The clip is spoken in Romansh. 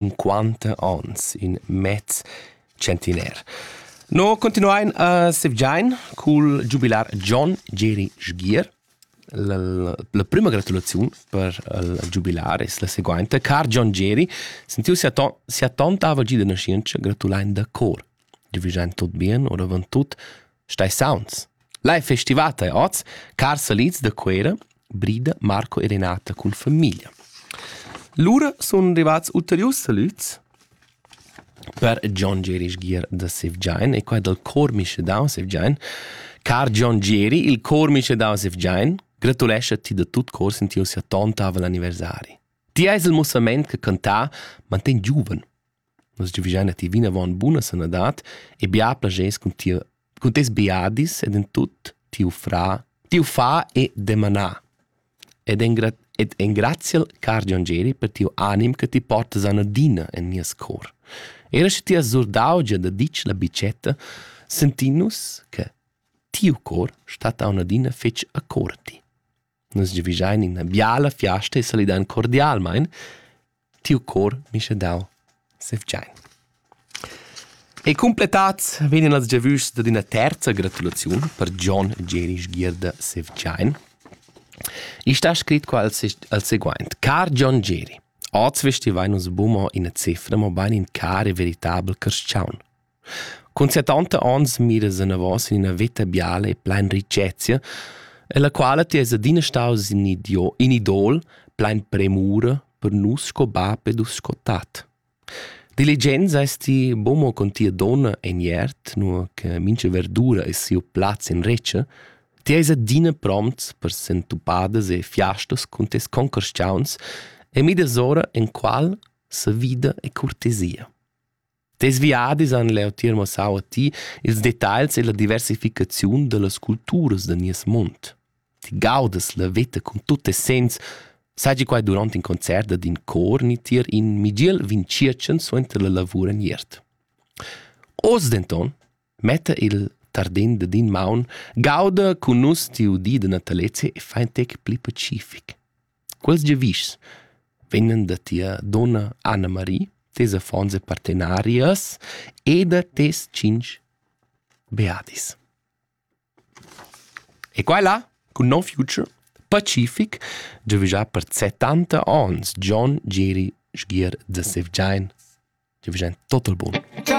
cinquanta ons, in mez centiner. No continuain a sevgiain cul giubilar John Geri Sgier. La, la prima gratulaziun per il giubilar es la seguainta. Car John Geri, sentiu sia, ton, sia tonta avagia da nascientscha, gratulain da cor. Giubilain tot bien, oravant tut Stai sauns. L'hai festivat ei oz, car salids da Cuera, Brida, Marco e Renata cun famiglia. Lura sun rivats ulteriurs salüds per John Geri sgir da Sevgiain e qua dal cor mischedau Sevgiain. Car John Geri, il cor mischedau Sevgiain, gratulescha ti da tut cor sin tiu sia tonta aval anniversari. Ti eis il mussament che cantà manten giuven. Nus giuvischein a ti vinavon buna sanadad e bia plaschers cun ti cun tes biadis ed en tut tiu fra, tiu fa e demana. Ed engra ed engraziel, car Gion Geri, per tiu anim che ti portas anadina en nies cor. Era sche ti has surdau gia da ditg la bicetta, sentin nus che tiu cor stat aunadina fetg accorti. Nus giavischein ina biala fiasta e salidein cordialmein. Tiu cor mischa dau sevgiain. E cumpletats vegnan las giavüschs dad ina terza gratulaziun per John Gerisch Gierda Sevgiain. Isch sta scrit qua al, al seguaint. Car John Geri, oz vestivain nus bumo ina cifra, mobain in car e veritabel carschaun. Cun settanta ons miras anavos in üna veta biala e plain richezia, ella quala ti es adina staus in idio in idol plain premura per nus sco bap ed us sco tat. Diligent seis ti buca mo con tia donna en iert, nua che mincha verdura es siu plaz in retscha, ti eis adina prompts per sentupadas e fiastas cun tes concorschaunts e midas ora en qual sa vida e cortesia. Tes viadis han leu tier mussau a ti ils detagls e la diversificaziun dallas culturas da nies mund. Ti gaudas la veta cun tut essens, sagi quai durant in concert dad in cor ni tier in migiel vin tschiertschen suenter la lavur en iert. Oz denton Metta il tardin dad in maun, gauda cun nus tiu di da natalezia e fa in tec pli pacific. Quels giavischs vegnan da tia donna Anna-Marie, tes affons e partenarias e da tes tschintg beadis. E quella, cun No Future, Pacific, giavischà per 70 ons John Giri Sgier da Sevgiain. Giavischà total bun.